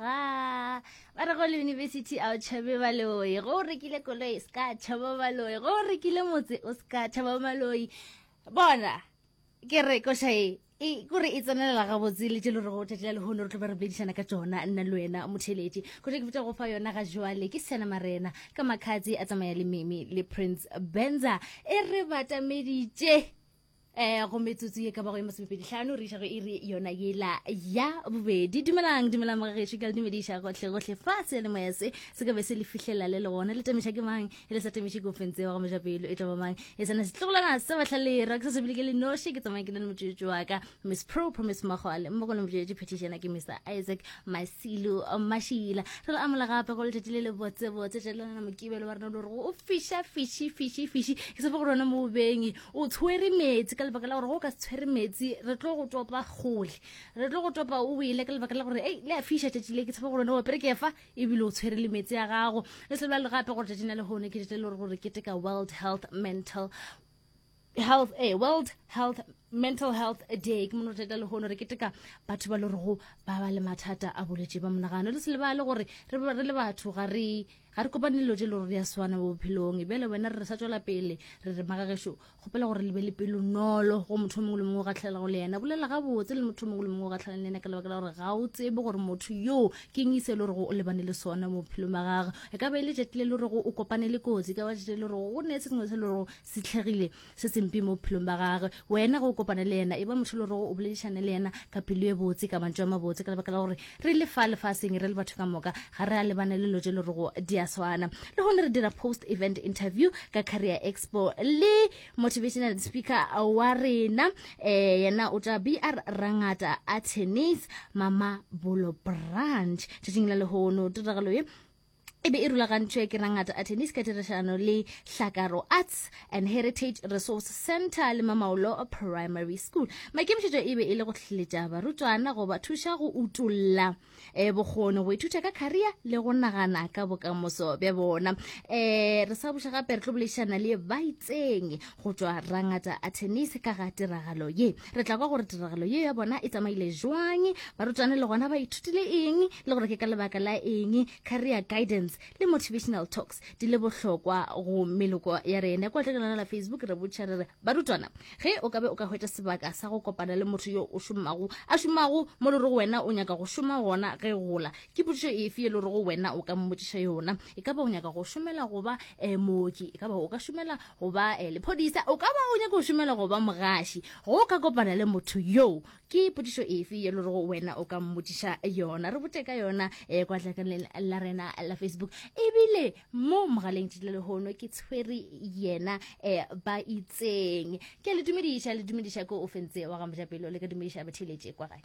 ga ba re go le university a o tšhabe baloi go o rekile koloi se ka tšhaba baloi go o rekile motse o se ka tšhaba baloi bona ke re košae e kore e tsenelela gabotse le tšelo re go tšatši la lehono re tlo ba re boledišana ka tsona nna le wena motheletši kgote ke botsa go fa yona ga jwale ke sena marena ka makgatse a tsamaya le meme le prince benza e re batameditše um go metsotso ye ka bago ye masomepedi tlhano re išago e re yona yela ya bobedi dumelang dumelang mogagešu ke le dumediša gohle gohle fa se le moya se se ka be se le fihlelela le le gona le tamiša ke mang e le sa tamiše kofeng tseo ga mojapelo e tla ba mang e sena setlogolana sa batlhalera ke sa sebile ke le noši ke tsamaya ke na le motswetsi wa ka miss pro promise mogole mo go le motswetsi phetišana ke mr isaac masilo mašila re le amola gape go letšatši le le botsebotse tšelelana mokibelo wa rena lo re go o fiša fiši fiši fiši ke sepe go rona mo bobeng o tshwere metsi ka lebaka la gore go ka se tshwere metsi re tlo go topa kgole re tlo go topa o wele ka lebaka la gore ei le a fiša tšatši le ke tshepa gore ne opere ke fa ebile o tshwere le metsi a gago le se le gape gore tšatši na le gone ke tšatši le gore gore keteka world health mental health eh, world health mental health day ke mono re le gono re keteka batho ba le rego ba ba le mathata a bolwetse ba monagano le se lebale gore re le batho ga re Ga re kopane dilo tše le gore di a swana mo bophelong, e bjale wena re re sa tšwela pele, re re magagešo, kgopela gore le be le pelo nolo go motho mongwe le mongwe o gatlhelelago le yena. Bolela gabotse le motho mongwe le mongwe o gatlhelang le yena ka lebaka la gore ga o tsebe gore motho yoo ke eng se e le gorego o lebane le sona mo bophelong ba gagwe. E ka ba e le tšatši le le gorego o kopane le kotsi, e ka ba tšatši le le gorego go ne se sengwe se le gorego se tlhegile. se sempe mo bophelong ba gagwe wena go kopana le yena e ba motho le gore o boledišane le yena ka pelo e botse ka mantšu a mabotse ka lebaka la gore re le fa lefaseng re le batho ka moka ga re a lebane le lo je le rego di a swana le gone re dira post event interview ka career expo le motivational speaker wa rena um yena o tla br rangata a tennis mama bolo branch tšatšing la lehono tiragalo ye e be e rulagantšwe ke rangata atenis ka tirišano le hlakaro arts and heritage resource center le mamaolo primary school maikemišetšo e be e le go tlhletša barutwana go ba thuša go utolla um eh, bokgoni go ithuta ka career le go nagana ka bokamoso bja bona um re sa buša gape re tlo boledišana le baitseng go tšwa rangata atenise ka ga tiragalo ye re tla kwa gore tiragalo ye ya bona e tsamaile jwang barutwane le gona ba ithutile eng le gore ke ka lebaka la eng career guidance le motivational talks di le bohlokwa go meloko ya rene kwa tleke lona la facebook re botšha re re barutwana ge o ka be o ka hwetša sebaka sa go kopana le motho yo o šomago a šomago mo le go wena o nyaka go šoma gona ge gola ke potšišo efe ye le go wena o ka mmotšiša yona e ka ba o nyaka go šomela goba um mooki e ka ba o ka šomela Go ba lephodisa, o ka ba o nyaka go šomela go ba mogaši. Go o ka kopana le motho yoo, ke potšišo efe ye le rego wena o ka mmotšiša yona? Re bote ka yona kwa tlakanleng la rena la Facebook. Ebile mo mogaleng tšitla lehono ke tshwere yena ba itseng. Ke a le dumediša, le dumediša ko o fentse wa ga Mojapelo, le ka dumediša batheletše kwa gae.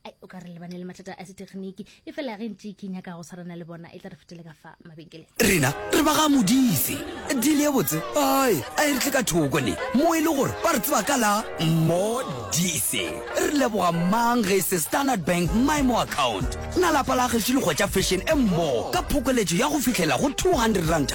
ai o ka re lebane le mathata a setegeniki e fela ge ntse ke nyaka go tshwarana le bona e tla re fetele ka fa mabenkeleng rena re ba ga modise dile e botse ai a e re tle ka thoko ne mo e le gore ba re tseba ka la modise re leboga mang ge e se standard bank mymo account na lapa la gešo le kgwetša fashion e mmogo ka phokoletso ya go fitlhela go 200 ranta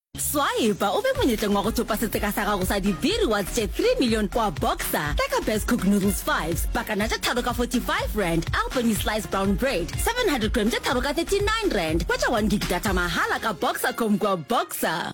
Swaepa o be monyetleng wa go thopa setseka sa gago sa dibiri wa tše 3 million kwa Boxer. Tla ka Best Cook Noodles 5s, pakana tše tharo ka 45 rand, Albany Slice Brown Bread 700 gram tše tharo ka 39 rand. Hwetša 1 gig data mahala ka Boxercom kwa Boxer.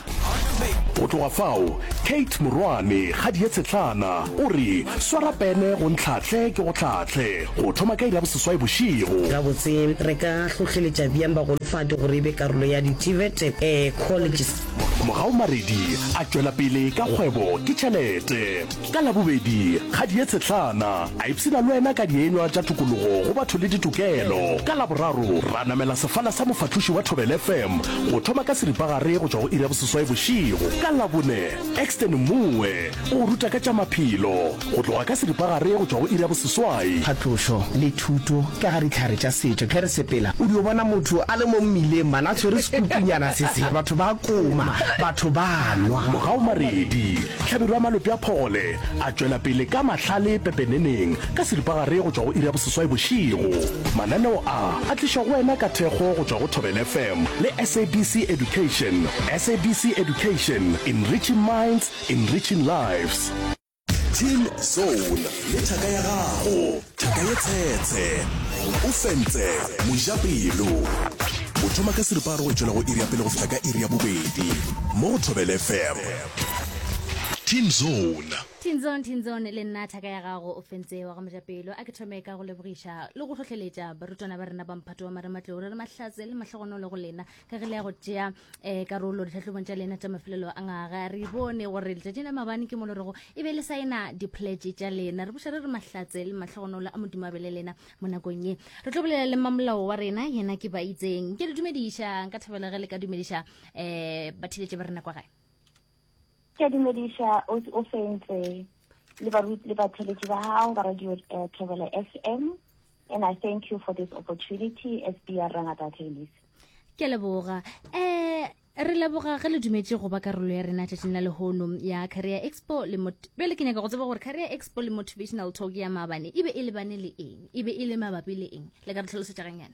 Go tloga fao, Kate morwane kgadi ye tshetlana o re, Swara pene go ntlhahle ke go hlahle, go thoma ka iri ya boseswai bošego. Gabotse, re ka hlohleletša bjang bagolofadi gore e be karolo ya di-TVET Colleges? Mogaumaredi a tšwela pele ka kgwebo ke tšhelete. Ka Labobedi, Kgadi ye Tshetlana a ipshina le wena ka dienywa tša tokologo go batho le ditokelo. Ka Laboraro, ra namela sefala sa mofahloši wa Thobela FM go thoma ka seripagare go tšwa go iri ya boseswai bošego. Ka Labone, Exton Mmoe o go ruta ka tša maphelo go tloga ka seripagare go tšwa go iri ya boseswai. Phatlošo le thuto ka ga dihlare tša setšo. Ge re sepela, o dio bona motho a le mo mmileng, mana a tshwere sekupunyana se se, batho ba koma, batho ba nwa. Mogaomaredi, Hlabirwa Malope a Phogole a tšwela pele ka mahlale pepeneneng ka seripagare go tšwa go iri ya boseswai bošego. Mananeo a a tlišwa go wena ka thekgo go tšwa go Thobela FM le SABC Education. SABC Education, enriching minds, enriching lives. Team Soul le thaka ya gago, thaka ye tshetshe. O fentse mojapelo. O thoma ka seripagare go tšwela go iri ya pele go fihla ka iri ya bobedi mo go Thobela FM. Teen Zone. Teen Zone, Teen Zone, le nna thaka ya gago o fentse wa go meja pelo. A ke thome ka go lebogiša le go hlohleletša barutwana ba rena ba mphato wa marematlou re re mahlatse le mahlogonolo go lena ka ge le ya go tšea um karolo ditlhahlobong tša lena tša mafelelo a ngaga re bone gore letšatšing la mabane ke mo le rego e be le saena dipletše tša lena re buša re re mahlatse le mahlogonolo a modimo a be le lena mo nakong ye re tlo bolela le mamolao wa rena yena ke ba itseng ke le dumediša nka thabela ge le ka dumediša um batheletše ba rena kwa gae Ke a dumediša o fentse le baruti le batheletši ba gago ba radio uh, Thobela FM and I thank you for this opportunity as BR Rangata Tennis. Ke leboga. Eh re leboga ge le dumetše go ba karolo ya rena tšatšing la lehono ya career expo le bjale ke nyaka go tseba gore career expo le motivational talk ya maabane e be e lebane le eng e be e le mabapi le eng le ka re tlhalosetša ganyana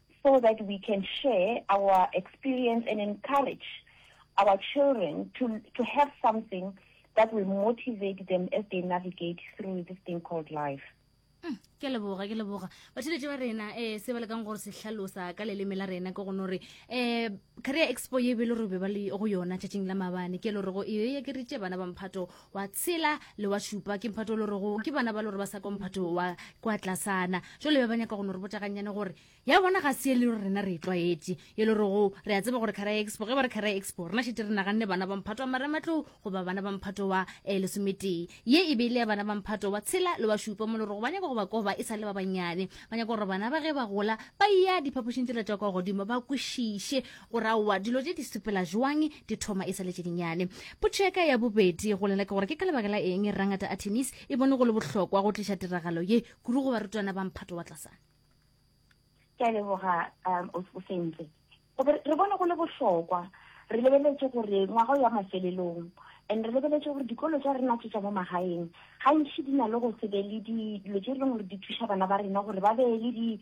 so that we can share our experience and encourage our children to, to have something that will motivate them as they navigate through this thing called life. Hmm, ke leboga ke leboga batheletše ba rena um se ba lekang gore se hlalosa ka leleme la rena ke gone gore um career expo ye be le gore be ba le go yona tšatšing la mabane ke le gore go e ekeritše bana ba mphato wa tshela le wa šupa ke mphato o le rego ke bana ba le gore ba sa kwa mphato wa kwa tlasana jale be ba nyaka go no re botagannyane gore ya bona ga se e le rena re e tlwaetše e le rego re a tseba gore kgara expo ge ba re kgara expo rena šete re naganne bana ba mphato wa marematlou goba bana ba mphato wa um lesometee ye e be e le ya bana ba mphato wa tshela le wa šupa mo le rego ba nyaka go ba koba e sa le ba bannyane ba nyaka gore bana ba ge ba gola ba ya diphapošing tse la tšwa kwa godimo ba kwešiše Gore aowa dilo tše di sepela joang di thoma e sa le tše dinyane. Potšo ya ka ya bobedi go lena ke gore ke ka lebaka la eng Rangata Artemis e bone go le bohlokwa go tliša tiragalo ye kudu go barutwana ba mphato wa tlasana? Ke a leboga um, o o sentle. Go be re bone go le bohlokwa re lebeletše gore ngwaga o ya mafelelong and re lebeletše gore dikolo tša rena tše tša mo magaeng gantši di na le go se be le dilo tše e leng gore di thuša bana ba rena gore ba be le di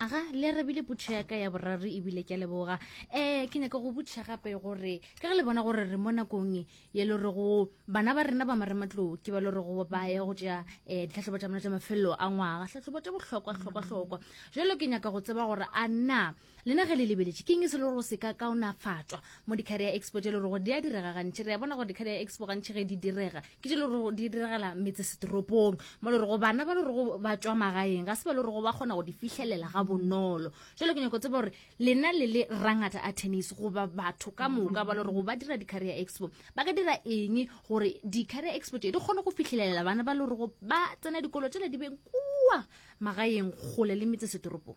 aga le arabile putšho ya ka ya boraro ebile ke a leboga um ke nyaka go butšha gape gore ka ge le bona gore re mo nakong e ye le gore go bana ba rena ba marematlou ke ba le gore go ba ye go tšea um ditlhatlhobo tša bona tša mafelelo a ngwaga tlhatlhobo tša bohlokwa hlokwa hlokwa jalo ke nyaka go tseba gore a na Lena ge le lebeletše, ke eng se le go se ka kaonafatšwa mo di-Career Expo tše le gore di a direga gantši? Re a bona gore di-Career Expo gantši ge di direga ke tše le gore di diregela metsesetoropong mo le gore bana ba le gore ba tšwa magaeng ga se ba le gore ba kgona go di fihlelela ga bonolo. Jalo ke nyako tseba gore lena le le rangata a tennis goba batho ka moka ba le gore ba dira di-Career Expo ba ka dira eng gore di-Career Expo tše di kgone go fihlelela bana ba le gore ba tsena dikolo tšela di beng kua magaeng kgole le metsesetoropong?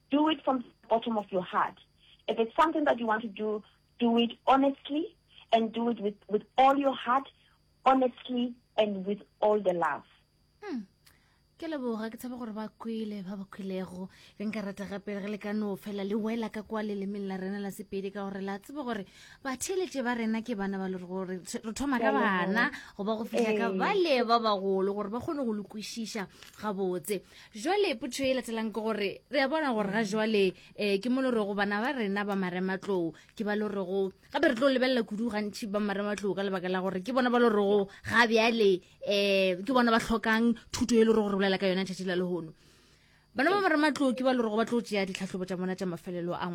Do it from the bottom of your heart. If it's something that you want to do, do it honestly and do it with, with all your heart, honestly and with all the love. Hmm. ke leboga ke tshabe gore ba kwele ba ba kwelego be nka rata gape re le ka no fela le wela ka kwa lelemeng la rena la sepedi ka gore la tsebe gore batheletše ba rena ke bana ba le gore re thoma ka bana goba go fitlha ka ee. bale ba bagolo gore ba kgone go lokwešiša gabotse jwale potho e latelang ke gore re a bona gore ga jwale um ke mo le rego bana ba rena ba marematlou ke ba le rego gape re tlo lebelela kudu gantšhi ba marematlou ka lebaka la gore ke bona ba le rego ga bjale um ke bona ba tlhokang thuto e le rego re bolela ka yona tšatši la lehono bana ba marematlou ke ba le rego ba tlo tšea ditlhahlobo tša bona tša mafelelo a